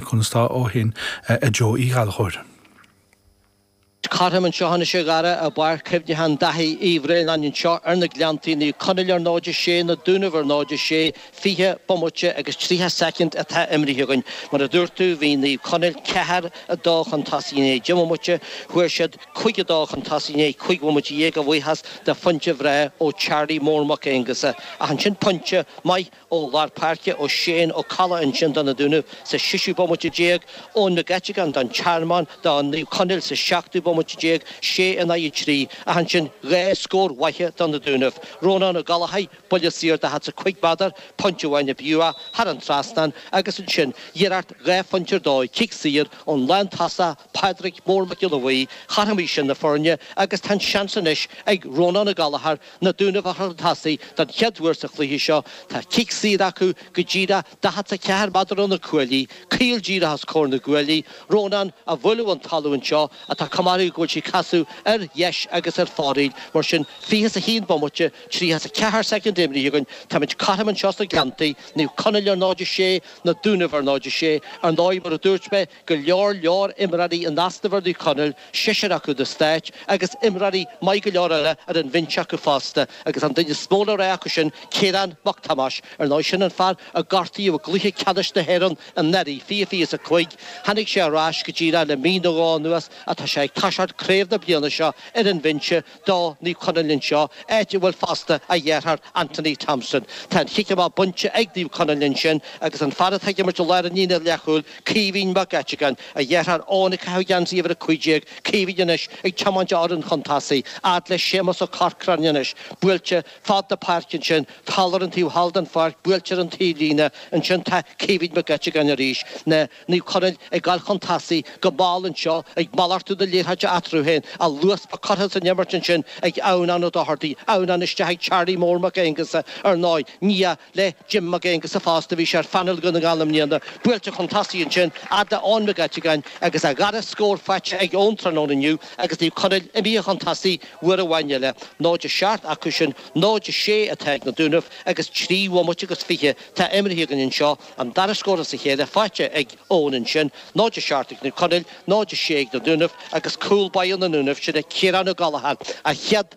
Conas tá ó shin, a Joe Uí Ghallchóir? Cothrom anseo anois a Dhara, i bPáirc Chuimhneacháin Dháithí Uí Bhraonáin anseo ar na Gleanntaí, Naomh Conaill ar 0-6, Na Dúnaibh ar 0-6, 20 bomaite agus 30 soicind atá imrithe againn. Mar a dúirt tú, bhí Naomh Conaill ceathair a dó chun tosaigh i ndiaidh deich mbomaite, chuaigh siad cúig a dó chun tosaigh i ndiaidh cúig bhomaite dhéag a bhuíochas de phointe bhreá ó Charlie Mór Mac Aonghusa, ach ansin pointe maith ó lár páirce, ó Shane Ó Cadhla ansin do na Dúnaibh sa seisiú bomaite déag, Eoin McGettigan don Tearmann do Naomh Conaill sa seachtú bomaite déag, sé in aghaidh trí, ach ansin dhá scór mhaithe do na Dúnaibh, Rónán Ó Gallchóir buille saor daichead is a cúig méadar, pointe amháin a bhí uaidh thar an trasnán agus ansin iarracht dhá phointe ar dóigh, cic saor ón lántosaí, Pádraic Mór Mac Giolla Bhuí. Chothromaigh sin na foirne agus tá an seans anois ag Rónán Ó Gallchóir, Na Dúnaibh a chur chun tosaigh don chéad uair sa chluiche seo. Tá cic saor acu go díreach 44 méadar ó na cuaillí, caol díreach os comhair na gcuaillí. Rónán á bualadh ón talamh anseo ach tá cuma air go bhfuil sí ag casadh ar dheis agus ar fóraoil, mar sin fiche is a haon bomaite, tríocha is a ceathair soicind imrithe againn. Táimid cothrom anseo sna Gleanntaí, Naomh Conaill ar 0-6, Na Dúnaibh ar 0-6. Ar ndóigh, mar a dúirt mé, go leor leor imreoirí in easnamh ar Naomh Conaill, seisear acu do Stáit, agus imreoirí maith go leor eile ar an bhinse acu fosta, agus an duine is mó le rá acu sin Ciarán Mac Tomáis. Ar ndóigh, sin an fear a gortaíodh i gcluiche ceannais na hÉireann anuraidh, fiche fiche is a cúig. Tháinig sé ar ais go díreach le mí nó dhó anuas ach tá sé ag toiseacht craobh na bliana seo ar an bhinse, do Naomh Conaill anseo, áit a bhfuil fosta a dheartháir Anthony Thompson. Tá an chic amach bainte ag Naomh Conaill ansin agus an fear atá ag imirt i lár an líne leathchúil, Caoimhín Mac Eiteagáin, a dheartháir Eoin ag caitheamh geansaí uimhir 15, Caoimhín anois ag tiomáint a fhoireann chun tosaigh, fhad le Séamus Ó Corcráin anois, buailte fad na páirce ansin, thall ar an taobh thall den pháirc, buailte ar an taobhlíne, ansin tá Caoimhín Mac Eiteagáin arís, na. Naomh Conaill ag dul chun tosaigh go mall anseo, ag malartú na liathróide eatarthu féin, ach luas maith curtha san imirt ansin ag Adhamhnán Ó Dochartaigh, Adhamhnán isteach ag Charlie Mór Mac Aonghusa, ar ndóigh, nia le Jim Mac Aonghusa fosta, bhí sé ar phainéal Dhún na nGall i mbliana, buailte chun tosaigh ansin fhad le Eoin Mac Eiteagáin agus a dhara scór faighte ag Eoin tráthnóna inniu agus Naomh Conaill imithe chun tosaigh uair amháin eile. 0 7 acu sin, 0 6 atá ag na Dúnaibh agus trí bhomaite agus fiche atá imeartha againn anseo. An dara scór as a chéile faighte ag Eoin ansin, 0-7 ag Naomh Conaill, 0-6 ag na Dúnaibh agus cúl báire na nDúnaibh sin ag Ciarán Ó Gallchóir, a chéad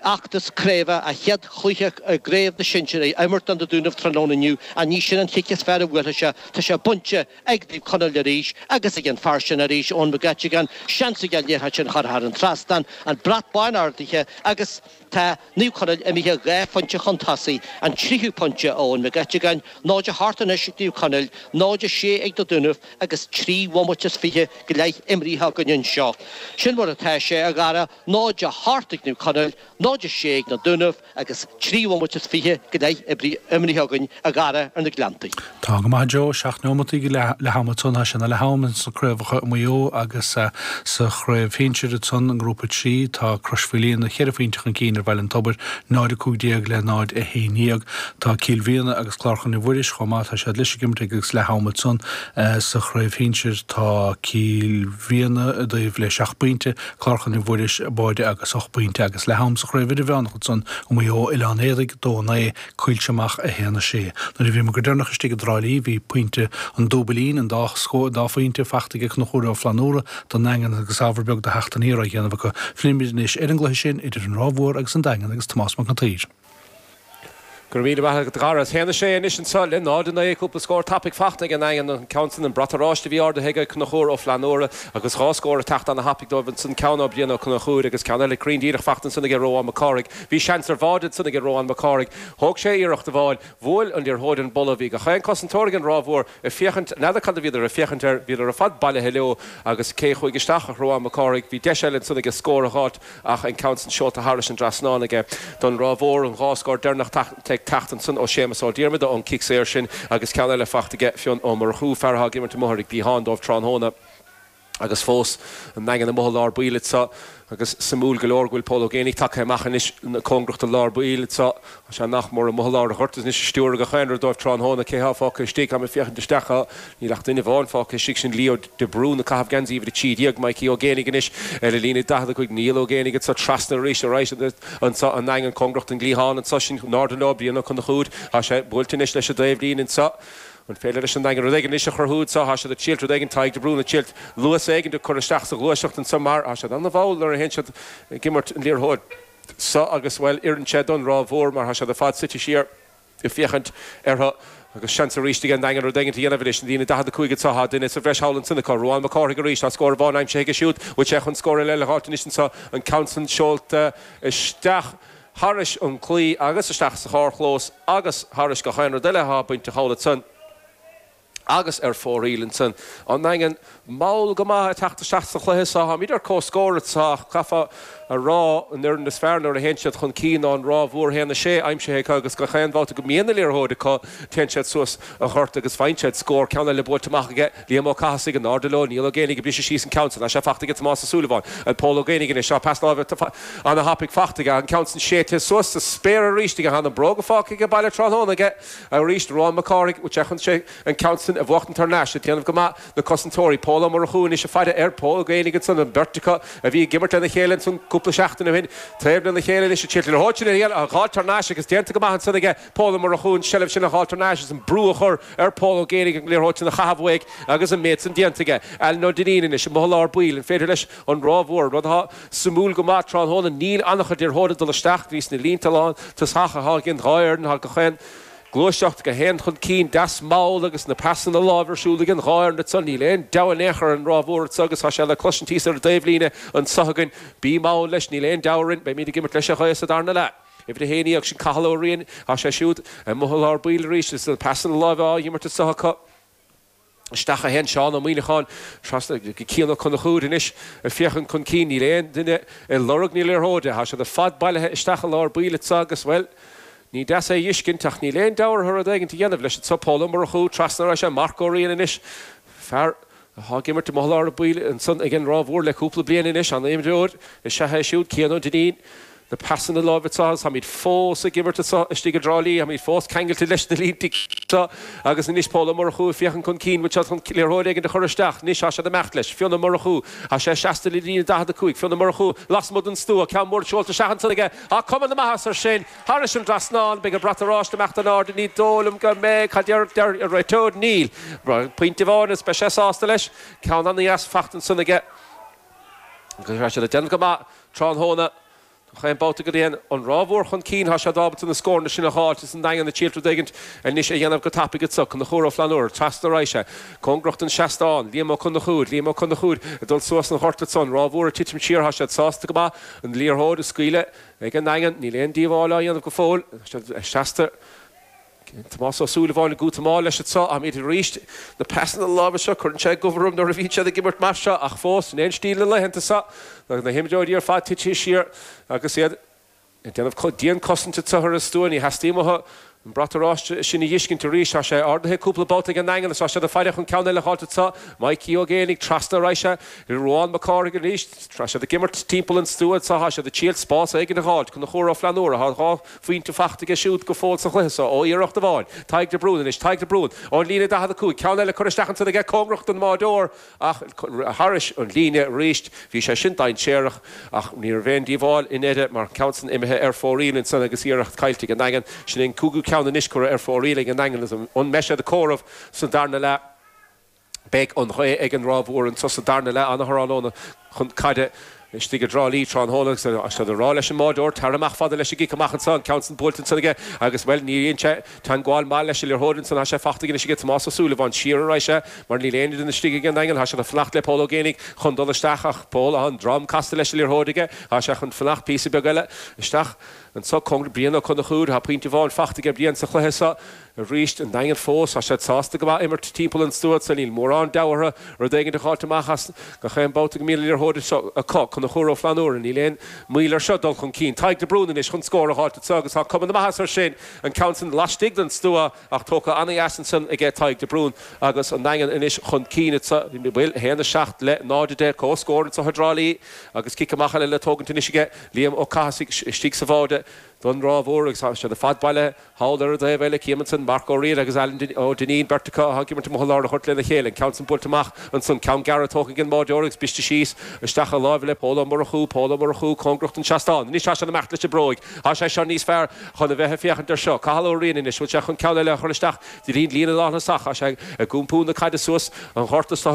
fheachtas craoibhe, a chéad chluiche i gcraobh na sinsear, á imirt do na Dúnaibh tráthnóna inniu. Ní hí sin an chic is fearr a bhuailfidh sé. Tá sé bainte ag Naomh Conaill arís agus ag an bhfear sin arís, Eoin McGettigan. Seans aige an liathróid sin a chur thar an trasnán, an brat bán ardaithe agus, Tá Naomh Conaill imithe dhá phointe chun tosaigh, an tríú pointe ó Eoin Mac Eiteagáin, 0 8 anois ag Naomh Conaill, 0 6 ag Na Dúnaibh agus trí bhomaite is fiche go leith imrithe againn anseo. Sin mar atá sé, a Dhara, 0 8 ag Naomh Conaill, 0 6 ag Na Dúnaibh agus trí bhomaite is fiche go leith imrithe againn, a Dhara, ar na Gleanntaí. Tá go maith, a Joe. Seacht neomataí go leath-am ansan. Tá sé ina leath-am ins na craobhacha i Maigh Eo agus sa chraobh shinsir ansan i ngrúpa a trí tá Crois Mhaoilíona cheithre phointe chun cinn ar Bhaile an Tobair, 0, 15 le 0, 11. Tá Cill Mhíona agus Clár Chlainne Mhuiris chomh maith. Tá siad leis ag imirt ag agus leath am ansan sa chraobh shinsir. Tá Cill Mhíona i dtaobh le seacht bpointe, Clár Chlainne Mhuiris báide agus ocht bpointe agus leath-am sa chraobh idirmheánach ansan i Maigh Eo, Oileán Éadaí, 2, 9, Coillte Mach 1 6. Nuair a bhíomar go deireanach istigh i dTrá Lí bhí pointe an dúbailín, an dá scór, an dá phointe, fachta ag Cnuchúr Ó Flannúra don nDaingean agus ábhar beag de theacht aniar á dhéanamh acu. Fillimid anois ar an gcluiche sin idir an Ráth Mhór agus an Daingean agus Tomás Mac an tSaoir. Go raibh míle maith agat, a Dhara. 1 6 anois anseo le 0 9. Cúpla scór tapaidh fachta ag an nDaingean, an ceann san an brat oráiste a bhí ardaithe ag Cnuchúr Ó Flannúra agus dhá scór ag teacht ana-thapaidh dóibh ansan, ceann ó Brian Ó Cnuchúir agus ceann eile cruinn díreach fachta ansan ag Ruán Mac Cárthaigh. Bhí seans ar bháide ansan ag Ruán Mac Cárthaigh. Thóg sé iarracht amháin. Bhuail an liathróid an polla. Bhí gach aon chosantóir ag an Ráth Mhór ag féachaint. N'fheadar cad a bhíodar ag féachaint air. Bhíodar ar fad bailithe leo. Agus cé chuaigh isteach ach Ruán Mac Cárthaigh. Bhí deis eile ansan aige scór a dh'fháilt ach an ceann san seolta thairis an dtrasnán aige don Ráth Mhór. An dhá scór deireanach ag teacht ansan ó Séamas Ó Diarmada ón chic saor sin agus ceann eile fachta aige Fionn Ó Murchú, fear atá ag imirt amuigh ar an gcliathán dóibh tráthnóna. Agus fós, an Daingean amuigh i lár baill anseo, agus suimiúil go leor go bhfuil Pól Ó Géanaigh tagtha amach anois cóngarach do lár baill anseo, tá sé nach mór amuigh i lár an ghoirt is anois ag stiúradh gach aon rud dóibh tráthnóna, cé thá fágtha istigh, tá mé ag féachaint isteach acu, níl ach duine amháin fágtha istigh, sin Leo de Brún, ag caitheamh geansaí uimhir a trí déag, Mikey Ó Géanaigh anois ar an líne, daichead a cúig, Niall Ó Géanaigh anseo trasna arís ar ais anseo, an Daingean, cóngarach don gcliathán anseo, sin anoir i dtreo Brian Ó Cnuchúir, tá sé buailte anois leis an dtaobhlíne anseo. An féidir leis an Daingean rud éigin anois a chruthú anseo? Thá siad ag triailt rud éigin, Tadhg De Brún ag triailt luas éigin a chur isteach sa ghluaiseacht anseo mar thá siad an-mhall nuair a théann siad ag imirt an liathróid seo agus, bhuel, oireann sé don Ráth Mhór mar thá siad ar fad suite siar ag féachaint orthu agus seans arís ag an Daingean rud éigin a dhéanamh anois ar an líne 45 anseo, thá duine sa bhreis thall ansin acu. Ruán Mac Cárthaigh arís, thá scór amháin aimsithe aige siúd, bhfuil sé chun scór eile a fháilt anois anseo? An ceann san seolta isteach. thairis an claí agus isteach sa charrchlós agus thairis gach aon rud eile athá bainteach amhlaidh san agus ar fóraoil ansan. An Daingean, mall go maith ag teacht isteach sa chluiche so. Táimid ar comhscór anseo ach caithfead a rá an fhoireann is fearr nuair a théann siad chun cinn ná an Ráth Mhór, 1 6 aimsithe acu agus gach aon bhabhta go mbíonn an liathróid acu téann siad suas an gort agus faigheann siad scór. Ceann eile buailte amach aige. Liam Ó Cathasaigh, in airde leo, Niall Ó Géanaigh ag briseadh síos an ceann san, tá sé fachta aige, Tomás Ó Súilleabháin, and Pól Ó Géanaigh anois, tá peas láimhe ana thapaidh fachta aige, an ceann san séidte suas sa spéir arís aige, tá na bróga fágtha aige baile tráthnóna aige arís, Ruán Mac Cárthaigh, féachann sé an ceann san a bhuachtaint thar n-ais, ag déanamh go maith, na cosantóirí, Pól Ó Murchú anois ag faire air, Pól Ó Géanaigh ansan, an bheirt acu a bhí ag imirt lena chéile ansan cúpla seachtain ó shin, taobh lena chéile anois, ag triailt a thóitear ar iall, a dh'fháil tar n-ais agus déanta go maith ansan aige, Pól Ó Murchú an tseilbh sin a fháil tar n-ais agus an brú a chur ar Pól Ó Géanaigh an liathróid sin a chaitheamh uaidh agus an méid san déanta aige. Alan Ó Duinnín anois amuigh i lár baill. An féidir leis an Ráth Mhór, rud atá suimiúil go maith tráthnóna, níl an-chuid liathróidí ag dul isteach, ins na línte lántosach ag an dhá fhoireann, tá gach aon gluaiseacht, gach aon chun cinn deas mall agus na pasanna láimhe ar siúl ag an dhá fhoireann anso, níl aon deabhadh in aon chor ar an Ráth Mhór anso agus tá sé le cloisint thíos ar an dtaobh líne anso againn, bí mall leis, níl aon deabhadh orainn, beimíd ag imirt leis an ghaoth sa darna leath. Uimhir a naoi, agus sin Cathal Ó Riain. Tá sé siúd amuigh i lár baill arís agus na pasanna láimhe á dh'imirt anso acu. Isteach a théann Seán Ó Muimhneacháin, trasna go Cian Ó Conchúir anois, ag féachaint chun cinn. Níl aon duine ag lorg na liathróide. Tá siad ar fad bailithe isteach i lár baill anso agus, bhuel, ní deas é a dh'fheiscint, ach níl aon deabhadh orthu rud éigint a dhéanamh leis anso. Pól Ó Murchú, trasna, arís, Marc Ó Riain anois, fear Atá ag imirt amuigh i lár baill ansan ag an Ráth Mhór le cúpla bliain anois. An-imreoir is ea é siúd, Cian Ó Duinnín. Na pasanna láimhe seo agus táimid fós ag imirt anseo istigh i dTrá Lí, táimid fós ceangailte leis na líntí anseo. Agus anois Pól Ó Murchú ag féachaint chun cinn anseo chun liathróid éigin a chur isteach anois. Tá sé ag imeacht leis. Fionn Ó Murchú, tá sé trasna na líne 45. Fionn Ó Murchú lasmuigh den stua, ceann mór seolta isteach ansan aige. Tá cuma na maitheasa air sin. Thairis an dtrasnán, an mbeidh an brat oráiste ag imeacht in airde ní dóigh liom go mbeidh, cad deir, deir, an réiteoir, níl, pointe amháin is beidh sé sásta leis, ceann an-deas faighte ansan aige. Agus tá siad ag déanamh go maith tráthnóna, chaon babhta go dtéann an Ráth Mhór chun cinn tá siad ábalta na scóranna sin a dh'fháilt is an Daingean ag triail rud éigint anois a dhéanamh go tapaidh anso. Conchúr Ó Flannúra, trasna ar an dtaobh so cóngarach don seastán, Liam Ó Conchúir, Liam Ó Conchúir ag dul suas an ghoirt ansan, Ráth Mhór ag titim siar tá siad sásta go maith an liathróid a scaoileadh Ag an nDaingean, níl aon díobháil á dhéanamh go fóill. Trasna, Tomás Ó Súilleabháin ag dul go mall leis anseo, am éigin arís. Na pasanna láimhe seo, cuireann sé goimh orm nuair a bhíonn siad ag imirt mar seo, ach fós, sin é an stíl na laethanta seo, tá na himreoirí ar fad titithe siar agus iad ag déanamh dian-cosaint anseo ar an stua. Ní theastaíonn uathu An brat oráiste sin a dh'fhiscint arís, tá sé ardaithe cúpla babhta ag an nDaingean is tá siad ag faire chun ceann eile a fháilt anso. Maidhcí Ó Géanaigh, trasna ar an dtaobh so, Ruán Mac Cárthaigh arís, tá siad ag imirt timpeall an stua anso, tá siad ag triail spás éigin a dh'fháilt. Conchúr Ó Flannúra, tá dhá phointe faighte aige siúd go fóill sa chluiche so ó iarracht amháin. Tadhg de Brún anois, Tadhg de Brún, ón líne 45, ceann eile curtha isteach ansin aige cóngarach don mbáireoir, Ach thairis an líne arís, bhí sé sin dainséarach, ach ní raibh aon díobháil i ndeireadh, mar ceann san imithe ar fóraoil ansan agus iarracht caillte ag an nDaingean. Sin é an cúigiú ceann anois curtha ar fóraoil ag an nDaingean an mbeidh siad á gcomhaireamh sa darna leath. Beidh an ghaoth ag an Ráth Mhór anso sa darna leath ana thráthnóna chun caide. istigh i dTrá Lí tráthnóna agus é seo le rá leis an mbáideoir, Tar amach, fada leis an gcic amach anso, an ceann san buailte ansan aige agus, bhuel, ní dhein sé teangmháil maith leis an liathróid ansan, thá sé fachta anois aige Tomás Ó Súilleabháin, siar a raghaidh sé mar níl aon duine istigh ag an nDaingean, thá sé chun fanacht le Pól Ó Géibheannaigh chun dul isteach ach Pól, thá an drom casta leis an liathróid aige, thá sé chun fanacht píosa beag eile isteach anso, go Brian Ó Conchúir, thá pointe amháin fachta aige Brian sa chluiche so. Arís, an Daingean fós, tá siad sásta go maith imirt timpeall an stua anso níl mórán deabhaidh orthu rud éigin a dh'fháilt amach as gach aon babhta go mbíonn an liathróid acu. Conchúr Ó Flannúra Níl aon mhoill air seo dul chun cinn Tadhg de Brún anois chun scór a dh'fháilt anso agus tá cuma na maitheasa air sin, an ceann san laistigh den stua ach tógtha an-dheas ansan aige Tadhg de Brún agus an Daingean anois chun cinn anso, bhuel, 1, 7 le 0, 10, comhscór anso i dTrá Lí agus cic amach eile le tógaint anois aige Liam Ó Cathasaigh istigh sa bháide, don Ráth Mhór agus tá siad ar fad bailithe thall ar an dtaobh eile, Cian ansin, Marc Ó Riain agus Alan Ó Duinnín, beirt acu atá ag imirt amuigh i lár an ghoirt lena chéile, an ceann san buailte amach ansan, ceann gearra tógtha ag an mbáideoir agus briste síos isteach láimh le Pól Ó Murchú, Pól Ó Murchú cóngarach don seastán, anois tá sé á imirt leis an mbróig, tá sé seo níos fearr chun a bheith ag féachaint air seo, Cathal Ó Riain anois, bhfuil sé chun ceann eile a chur isteach, dtí an líne lántosach, tá sé ag iompú na caide suas an ghort, anso,